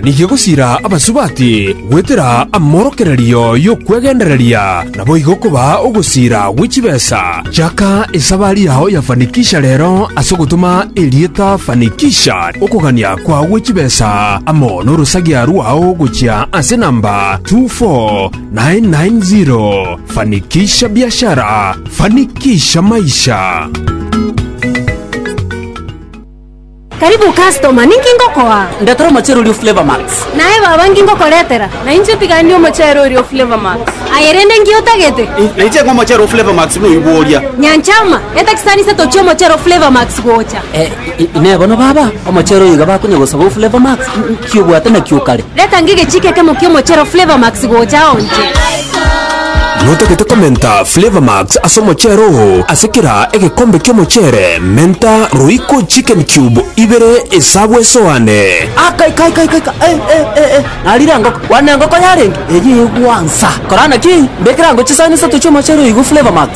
Nigo gosiira abasubati goetera amorokererio y'okwegendereria, naboigo kobaa ogosiira gwe chibesa. Chaka esabari yao ya Fanikisha rero ase ogotoma erieta Fanikisha okogania kwao gwe chibesa amo n'orosagia rwao gochia ase namba 24990. Fanikisha biashara, fanikisha maisha. Karibu customer, ninki ngokoa? Ndetera omochere oria o Flavour Max. Naye baba, nki ngokoretera? Nainche tigani omochere oria o Flavour Max. Aye rende nki otagete? Ih, nainche ng'a omochere o Flavour Max noigwo oria. Nyanchama, etakisanise tochie omochere o Flavour Max gocha. Eh, inee bono baba, omochere oyo iga bakonya gosaba o Flavour Max? Nki obwate nakio kare? Reta ng'e egechiika ekemo ki'omochero Flavour Max gocha ao inche. Notagete komenta Flavour Max ase omochero oo. Ase kera egekombe ki'omochere, menta Royco Chicken Cube ibere esabu esoane. Aka ika ika ika ika eh eh eh eh narire engoko kwana engoko yarenge eye egwansa korana ki mbekere ango chisaani isato chi'omochero oyo igwe Flavour Max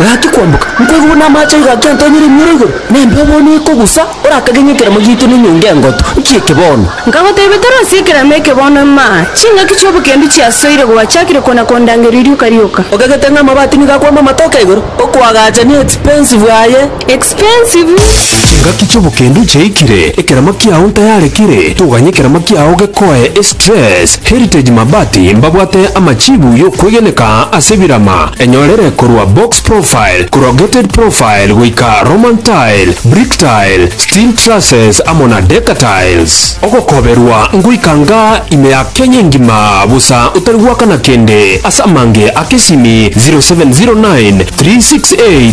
Gaki kwamboka, nkoigwa namache aiga akentenyera emioro igoro, na embeo bono ekogusa, orakage ng'a ekeramo giaito nenyonga engotu, nkieke bono. Nkagoteebia, Tari ase ekeramo eke bono, ima, ching'aki chi'obokendu chiasoire gwachiakire kona kondangeria rioka rioka. Okagete ng'a amabati nigo akwama amatoke igoro, okoagacha ne expensive aye. Expensive. Chingaki chobokendo chiaikire ekerama kiao ntayare kere toganye ekerama kiao gekoe estress Heritage Mabati mbabwate amachibu yokwegeneka ase ebirama enyorere korwa box profile corrugated profile goika Roman tile brick tile steel trusses amo na decker tiles ogokoberwa ngoika nga ime ya Kenya engima bosa otari gwakana kende ase amange a kesimi 0709 368